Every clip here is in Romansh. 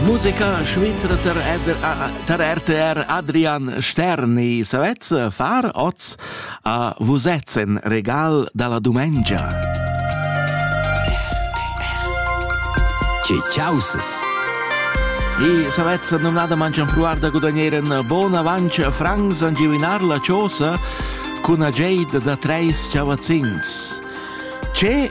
Musica svizra tar RTR Adrian Sterni. Savez far oz a vusez in regal da la dumengia? Che ciausas! E savez numnada mangian pruar da gudagnare in bon avanci francs an givinar la chosa cun a Jade da treis chavazzins. Ce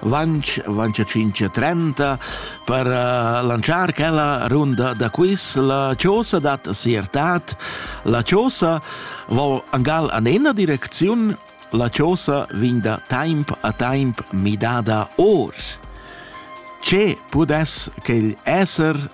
Vanch, vanch a 5.30 per uh, lanciar quella runda da quiz. La chosa dat siertat. La chosa vo angal an ena direcziun. La chosa vin da temp a temp midada or. Ce pudess quel esser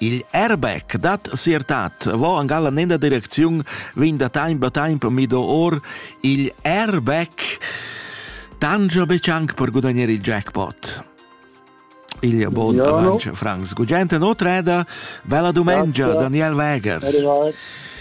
Il airbag dat sia tat va en galla nella direcziun vegn da temp a temp mido or il airbag tangia betg anche per guadagnare il jackpot. Il buon Buongiorno. avanti Franz Gugente non treda, bella domenica Grazie. Daniel Weger. Arrivati.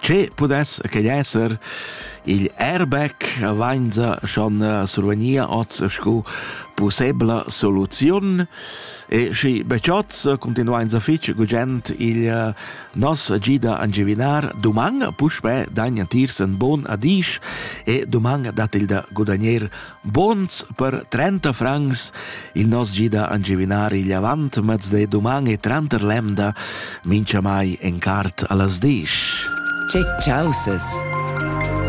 Che pudess que esser? Il airbag vainza schon survgnia hoz scu pussebla soluziun e schi be chots cuntinuainsa fich gugent il nos gida a giuvinar duman puspè dagna tiers ün bon adisch e duman dat il da gudagner Buns per trenta francs il nos gida a givinar igl avant mez de duman e tranter lemda, mincha mai en cart allas disch. Che chausas!